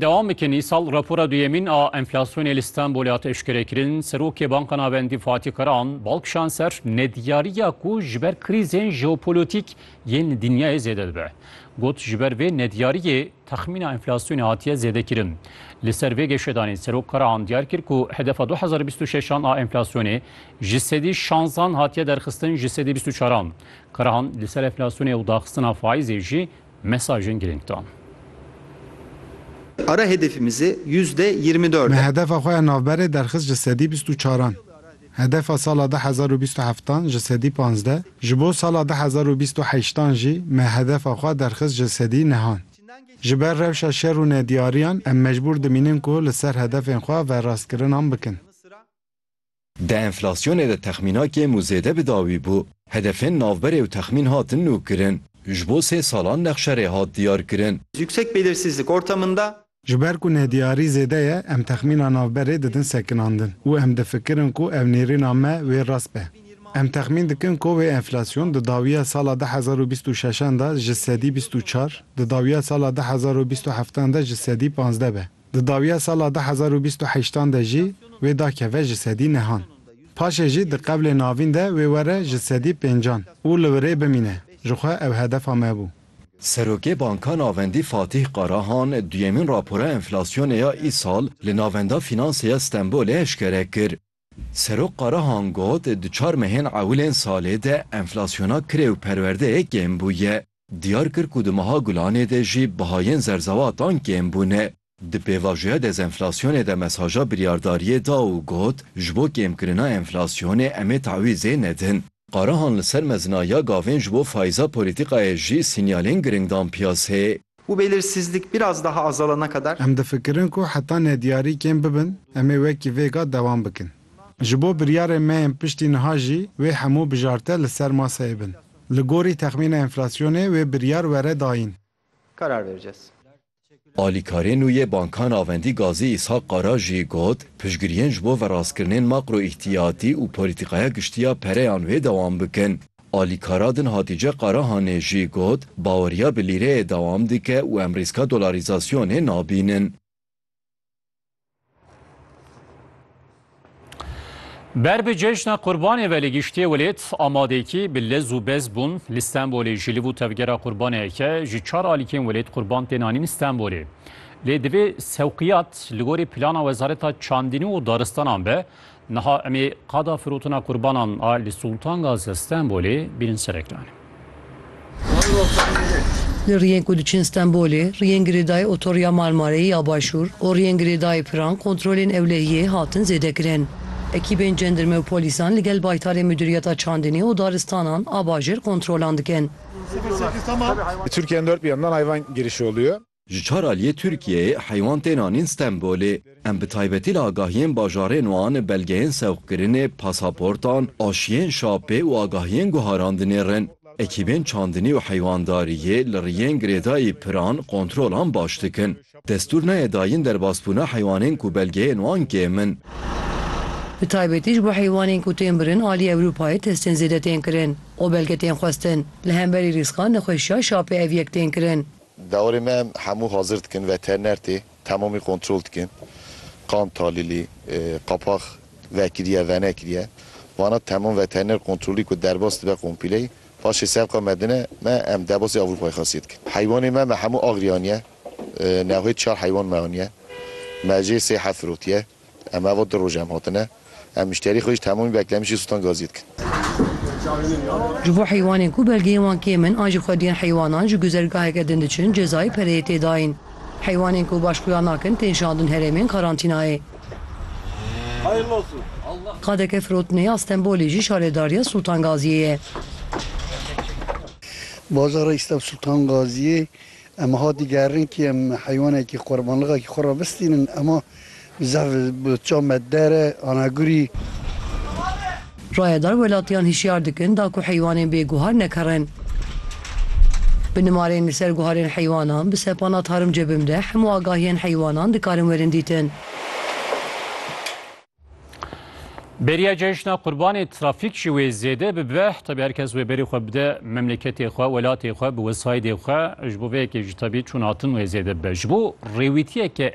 Dewam bikin îsal rapora duyemîn a enflasyonê li Stenbolê hat eşkerekirin. Serokê Banka Navendî Fatî Karahan bal kişand ser nediyariya ku ji ber krîzên jeopolotîk yên li dinyayê zêde dibe. Got ji ber vê nediyariyê texmîna enflasyonê hatiye zêdekirin. Li ser vê geşedanê Serok Karahan diyar kir ku hedefa du hezar û bîst û şeş an a enflasyonê ji sedî şanzan hatiye derxistin ji sedî bîst û çar an. Karahan li ser enflasyonê û daxistina faîzê jî Mesajên girîng dan. Ara hedefimizi yüzde yirmi Me dört e. hedefa xwe ya navberê derxist ji sedî bîst û çaran. Hedefa sala du hezar û bîst û heftan ji sedî panzdeh, ji bo sala du hezar û bîst û heştan jî me hedefa xwe derxist ji sedî nehan. Ji ber rewşa şer û nediyariyan em mecbûr dimînin ku li ser hedefên xwe verastkirinan bikin. Di enflasyonê de texmîna kêm û zêde bi dawî bû. Hedefên navberê û texmîn hatin nûkirin. Ji bo sê salan nexşerê hat diyarkirin. Yüksek belirsizlik ortamında. Ji ber ku nediyarî zêde ye, em texmîna navberê didin sekinandin û em difikirin ku ev nêrîna me wê rast be. Em texmîn dikin ku wê enflasyon di dawiya sala du hezar û bîst û şeşan de ji sedî bîst û çar, di dawiya sala du hezar û bîst û heftan de ji sedî panzdeh be. Di dawiya sala du hezar û bîst û heşt an de jî wê da keve ji sedî nehan. Paşê jî di qevlê navîn de wê were ji sedî pênc an û li wirê bimîne, ji xwe ew hedefa me bû. Serokê Banka Navendî Fatîh Qarahan duyemîn rapora enflasyonê ya îsal li Navenda Fînansê ya Stenbolê eşkere kir. Serok Karahan got, Di çar mehên ewilên salê de enflasyona kirê û perwerdeyê kêm bûye. Diyar kir ku di meha Gulanê de jî bihayên zerzewatan kêm bûne. Di pêvajoya dezenflasyonê de mesaja biryardariyê da û got, Ji bo kêmkirina enflasyonê em ê tawîzê nedin. Qarahan li ser mezina ya gavên ji bo faiza polîtîkayê jî sînyalên giring dan piyasê. Bu belirsizlik biraz daha azalana kadar. Em difikirin ku heta nediyarî kêm bibin em ê wekî vêga dewam bikin. Ji bo biryarên me yên piştî niha jî wê hemû bijarte li ser maseyê bin. Li gorî texmîna enflasyonê wê biryar were dayîn. Karar vereceğiz. Alîkarê nû yê Banka Navendî Gazî Îshak Qara jî got, Piştgiriyên ji bo verastkirinên makroîhtiyatî û polîtîkaya giştî ya pereyan wê dewam bikin. Alîkara din Hatîce Qarahanê jî got, Baweriya bi lîreyê dewam dike û em rîska dolarîzasyonê nabînin. Ber bi cejna qurbanê ve li giştê welêt amadekî bi lez û bez bûn li Stenbolê ji liv û tevgera qurbaneyeke ji çar alîkên welêt qurban tên anîn Stenbolê. Lê divê sewqiyat li gorî plana Wezareta Çandînî û Daristanan be Niha em ê qada firotina qurbanan a li Sultangazi ya Stenbolê bînin ser ekranê. Li riyên ku diçin Stenbolê, riyên girêdayî otoriya Marmareyê ya Başûr û riyên girêdayî Piran kontrolên ewlehiyê hatin zêdekirin. Ekîbên cendirme û polîsan li gel baytarê Muduriyeta Çandinê û Daristanan a Bajêr kontrolan dikin. Ji çar aliyê Tirkiyeyê heywan tên anîn Stenbolê. Em bi taybetî li agahiyên bajarên wan, belgeyên sewqkirinê, pasaportan, aşiyên şapê û agahiyên guharan dinêrin. Ekîbên çandinî û heywandariyê li riyên girêdayî piran, kontrolan baş dikin. Destûr nayê dayîn derbasbûna heywanên ku belgeyên wan kêm in. Bi taybetî ji bo heywanên ku tên birin aliyê Ewropayê testên zêde tên kirin û belge tên xwestin. Li hemberî rîska nexweşiya şapê ev yek tên kirin. Dewarê me em hemû hazir dikin veteriner tê temamî kontrol dikin. Qan talîlî, qapax vekiriye, venekiriye. Vana temam veteriner kontrolî ku derbas dibe kompîleyî paşê sevqa me dine me em derbasî Ewropayê xasiyê dikin. Heywanê me, me hemû agirî aniye. Newhê çar heywan me aniye. Me jê sey heft firotiye. Em ava du roj em hatine. Em mişterî xwe jî temamî beklemişî Sultan Gaziyê dikin. Ji bo heywanên ku belgeyên wan kêm in an ji xwediyên heywanan ji guzergaheke din diçin cezayê pereyê tê dayîn. Heywanên ku baş xuya nakin tên şandin herêmên karantînayê. Qadeke firotinê ya Stenbolê jî şaredariya Sultan Gaziyê ye. Bazara Îsteb Sultan Gaziyê. Em wiha digerin kî em heywanekî qurbanlixakî xwe re bistînin ema zef bi çav me dere ana gurî. Rayedar welatiyan hişyar dikin da ku heywanên bê guhar nekerin. Bi nimarên li ser guharên heywanan bi sepana Tarım Cebim de hemû agahiyên heywanan dikarin werin dîtin. Beriya cejna qurbanê trafîk jî wê zêde bibe tabi her kes wê berî xwe bide memleketê xwe welatê xwe bi wesaydê xwe ji bo vê yekê jî tabi çûn hatin wê zêde bibe ji bo rêwîtiyeke